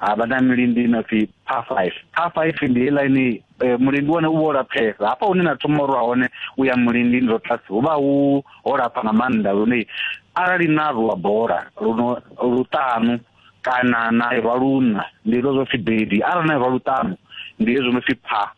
ha vha na milindi ino pfi par five par five ndi heiḽa ine eh, mulindi wone u vha o laphesa hafha hune na thoma urwa hone u ya mulindi ndo tlasi hu vha hu ho lapha nga maanḓa lune arali na rwa bola luno luṱanu kana na irwa luṋa ndi hezwo zwo pfi bedi arali na irwa luṱanu ndi hezwo no pfi pha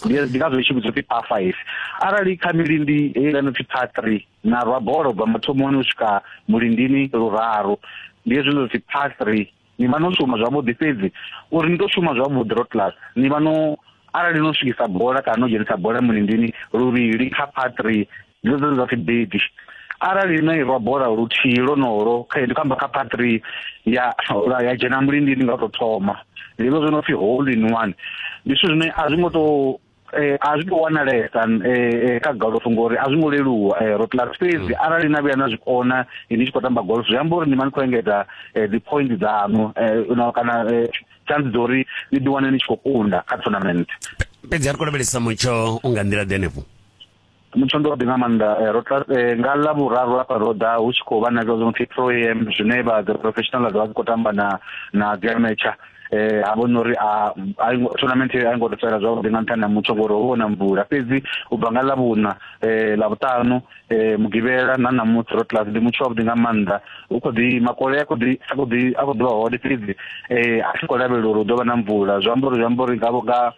ndi ngazwo i tshi vhudzwa phi pha five arali kha milindi heiḽa no pfi pha three na rwa bola u bva mathomoni u swika mulindini luraru ndi hezwo no pfi pha three ni vha no shuma zwavhuḓi fhedzi uri ni to shuma zwavhuḓi road class ni vha no arali no swikisa bola kana no dzhenisa bola mulindini luvhili kha patri dzo dzo dza fibedi arali no irwa bola luthihi lonolo kha ndi kamba kha patri ya ya dzhena mulindini nga to thoma ndi zwo no pfi hole in one ndi zwithu zwine a zwi ngo to eh a zwi to wanalesa eh kha golf ngori a zwi ngo leluwa eh ro class fhedzi mm. arali na vhuya na zwi kona eh, ni tshi khou tamba golf zwi amba uri ni mani khou engedza eh, dzi point dzaṋu eh, na kana eh, chance dza uri ni ḓi wane ni tshi khou kunda kha tournament fhedzi a ri kho lavhelesa mutsho u nga nḓila ḓe henefho mutsho ndi waḓi nga maanḓa eh, ro eh, nga ḽa vhuraru hafha ro ḓa hu tshi khou vha na zwa zwi no pfi pro am zwine vha the professional vha dzi khou tamba na na dzi amateur eh ha vhona uri a tournament a ngo tsela zwavhuḓi nga nṱhani ha mutsho ngori ho vhona mvula fhedzi u bva nga ḽavhuna eh ḽavhutanu eh mugivhela na ṋamusi ro class ndi mutsho wavhuḓi nga maanḓa u kho ḓi makole a kho ḓi a kho ḓi a kho ḓi vha hone fhedzi eh a tshi khou lavhelela uri hu ḓo vha na mvula zwi amba uri zwi amba uri ngavho nga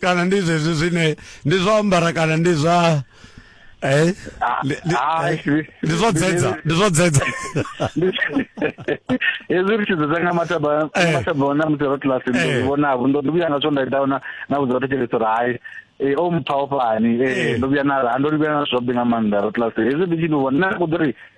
kana ndi zwezwi zwine ndi zwa ambara kana ndi zwa eh ndi- ndi- Ah, eh, zwi- ndi zwo dzedza ndi zwo dzedza hezwi ri tshi dzedza nga mataba Eh. mataba ona musi ro class ndo Eh. zwi vhonavho ndo ndo vhuya nga zwo nda ita ona na vhudza vhathu tshelede uri hai eh, o mpha o fhani Eh. eh, ndo vhuya na ha ndo vhuya na zwobe nga maanḓa ro class hezwi ndi tshi ndi vhona na kuḓo ri